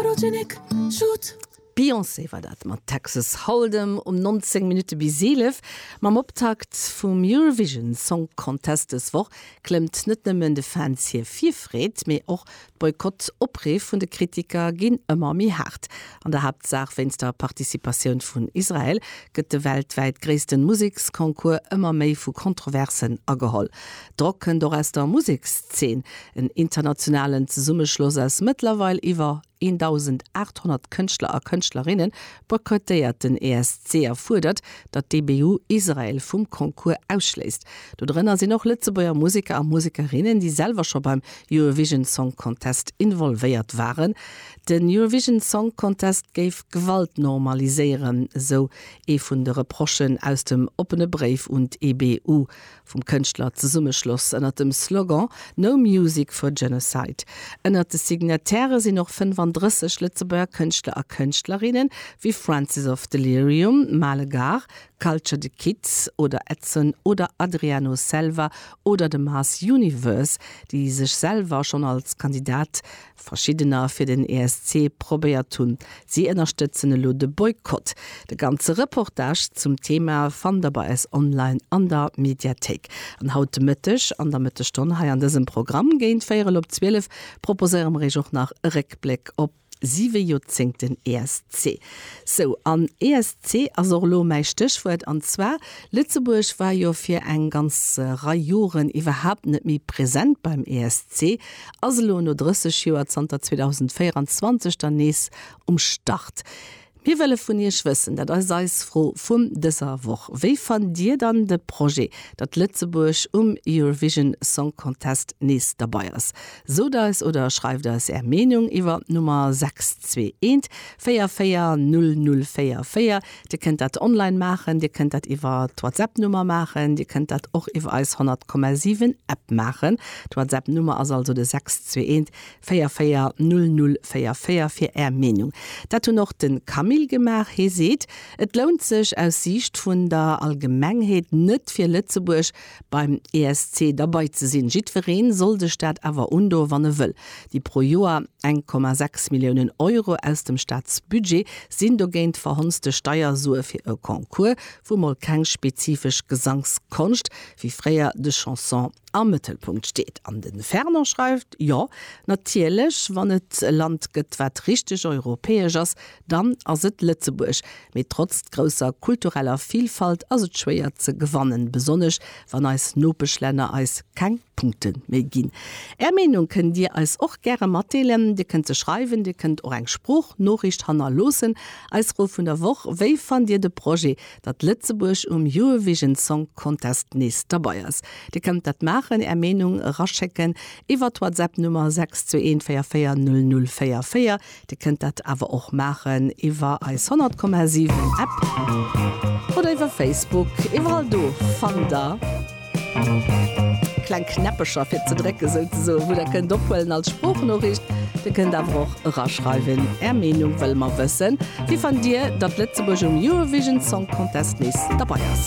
Photogenic Shoot. D'Beyoncé war dat mat Texas Hold'em um 19 Minutte bis 11. Mam Optakt vum Eurovision Song Contest dës Woch klëmmt net nëmmen de Fans hir Virfreed, mee och d'Boykott-Opriff vun de Kritiker ginn ëmmer méi haart. An der Haaptsaach wéinst der Participatioun vun Israel gëtt de weltwäit gréissten Museksconcours ëmmer méi vu Kontroversen ageholl. Drock kënnt och aus der Musekszeen. En internationalen Zesummeschloss aus mëttlerweil iwwer 1.800 Kënschtler a Kënschtlerinne boykottéiert den ESC a fuerdert, datt d'EBU Israel vum Concours ausschléisst. Do drënner sinn och Lëtzebuerger Museker a Musekerinnen, déi selwer scho beim Eurovision Song Contest involvéiert waren. Den Eurovision Song Contest géif Gewalt normaliséieren, esou ee vun de Reprochen aus dem oppene Bréif un d'EBU. vum Kënschtlerzesummeschloss ënnert dem Slogan No Music for Genocide. Ënnert de Signatairë sinn och 35 Lëtzebuerger Kënschtler a Kënschtlerinnen, wéi Francis of Delirium, Male Gare, Culture de Kids oder Edson oder Adriano Selva oder de Mars Universe, déi sech selwer schonn als Kandidat Verschiddener fir den ESC probéiert hunn. Si ënnerstëtzen elo de Boykott. De ganze Reportage zum Thema fannt der bei eis online an der Mediathéik. An haut de Mëtteg an der Mëttegstonn hei an dësem Programm géint véierel op zwielef proposéiere mer iech och nach e Réckbléck op siwe Joerzéngten ESC. Sou, an ESC ass och elo mäi Stéchwuert. An zwar, Lëtzebuerg war jo fir eng ganz Rei Joren iwwerhaapt net méi present beim ESC. ass elo no 30 Joer zanter 2024 dann nees um Start. Mir wëlle vun Iech wëssen, dat ass eis Fro vun dëser Woch, wéi fannt Dir dann de Projet, datt Lëtzebuerg um Eurovision Song Contest nees derbei ass? Sot eis oder schreift eis Är Meenung iwwer d'Nummer 6214 44004. Dir kënnt dat online maachen, Dir kënnt dat iwwer d'Whatsapp-Nummer maachen, Dir kënnt dat och iwwer eis 100,7 App maachen. D'Whatsapp-Nummer ass also de 621 44 0044 fir Är Meenung. Dat hunn och de Camille gemaach. Hie seet, et lount sech aus Siicht vun der Allgemengheet net fir Lëtzebuerg, beim ESC derbei ze sinn. Jiddwereen soll sech dat awer undoen, wann e wëll. Déi pro Joer 1,6 Milliounen Euro aus dem Staatsbudget sinn dogéint verhonzte Steiersue fir e Concours, wou mol keng spezifesch Gesangskonscht, wéi fréier de Chanson, am Mëttelpunkt steet. An de Fernand schreift, Jo, natierlech, wann et e Land gëtt, wat richteg europäesch ass, Dann ass et Lëtzebuerg. Mee trotz grousser kultureller Vilfalt ass et schwéier ze gewannen, besonnesch wann eis Nopeschlänner eis keng Punkte méi ginn. Är Meenung kënnt Dir eis och gäre matdeelen. Dir kënnt se schreiwen, Dir kënnt och eng Sproochnoriicht hannerloossen. Eis Fro vun der Woch, Wéi fannt Dir de Projet, datt Lëtzebuerg um Eurovision Song Contest nees derbei ass? Dir kënnt dat maachen, Är Meenung eraschécken iwwer d'Whatsapp Nummer 62144004. Dir kënnt dat awer och maachen iwwer eis 100,7 App oder iwwer Facebook. Iwwerall do fannt der kleng Knäppecher fir ze drécken, souzesoen, wou der kënnt ophuelen als Sproochnoriicht. Dir kënnt awer och eraschreiwen, Är Meenung wëlle mer wëssen. Wéi fannt Dir, datt Lëtzebuerg um Eurovision Song Contest nees derbei ass?